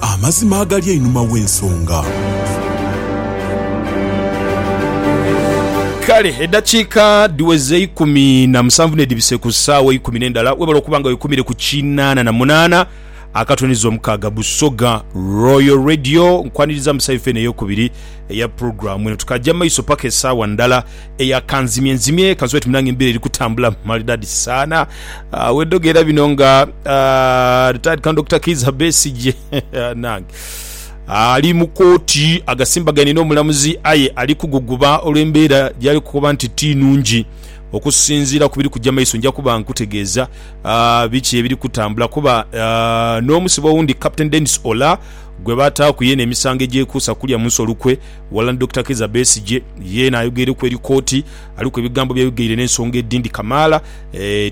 Amazima agali einhuma w'ensonga. Kale eddakiika dhiweze eikumi na musanvu n'edhibise ku ssaawa eikumi n'endala, webale okuba nga wekumire ku kinaana na munaana akatone zo mukaaga Busoga Royal Radio. Nkwaniriza mu side ffe eno ey'okubiri eya pulogulaamu eno. Tukaagya mu maiso paka esaawa ndala. eya kanzimye nzimye kansobe oti munange embera eri kutambula maridadi sana uh, wedogera bino nga uh, retired kan Dr. Kiza Besigye nange ali mu kooti agasimbaganye n'omulamuzi aye ali kuguguba olw'embeera gyali kukoba nti ti nungi okusinziira ku biri kujja maiso nja kuba nkutegeeza uh, biki ebiri kutambula kuba uh, n'omusibe owundi Captain Dennis Ola gwe bataaku yena emisango egyekuusa kulya munsi olukwe Walala ni Dokita Kiiza Besigye, yeena ayogeireku eri kooti, aliku ebigambo byayogeire n'ensonga edindi kamaala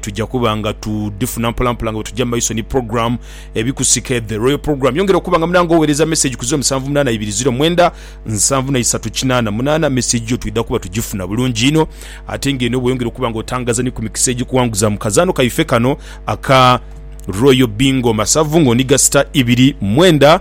tuja kuba nga tudhifuna mpolampola nga bwetuja mu maiso ni program Ebikusike The Royal Program. Yongera okuba nga munange owereza message ku ziro musanvu munaana ibiri ziro mwenda nsanvu na isatu kinaana munaana. Message yo twidha kuba tugifuna bulungi inho ate nga eno bweyongera okuba nga otangaza ni ku mikisa egikuwanguza mu kazaano kaife kano aka Royal Bingo Masavu nga oniga star ibiri mwenda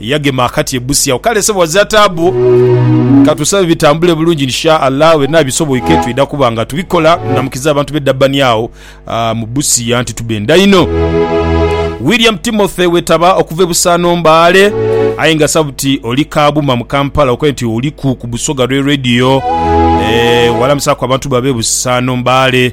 Yagema akati ebusi agho. Kale sebo ghazira taabu. Katusabe bitambule bulungi insha Allah byenha bisoboike twidha kuba nga tubikola. Namukiza abantu be Durban agho mu Busia anti tubendha inho. William Timothy wetaba okuva e Busaano Mbaale aye nga sabuti oli Kabuma mu Kampala okoye nti oliku ku Busoga lwe Radio. Eeh walamusaku abantu bo abe Busaano Mbaale.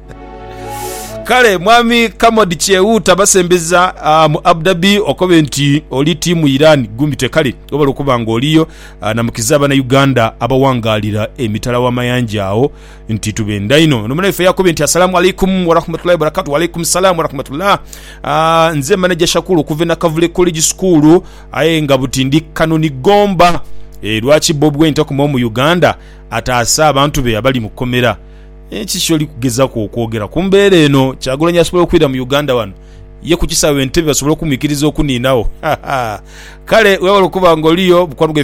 Kale mwami Kamodi kyeghuuta basembeza mu Abu Dhabi okobe nti oli tiimu Iran gumite kale webale okuba nga oliyo namukiza abana Uganda abawangalira emitala w'amayanja agho nti tubenda inho ono munaife yakobe nti assalamu alaikum warahmatullahi wabarakatu walaikum salam warahmatullah uh, nze manager Shakulu okuva Nakavule College School aye nga buti ndi Kanoni Gomba e, lwaki Bob Wine takuma omu Uganda ataase abantu be abali mu komera Kiki kyoli kugezaku okwogera ku mbeera eno? Kyagulanyi asobola okwira mu Uganda wano ye ku kisaawe Entebbe basobole okumwikiriza okuninagho? Haha kale webale okuba nga oliyo. Bukwabugha.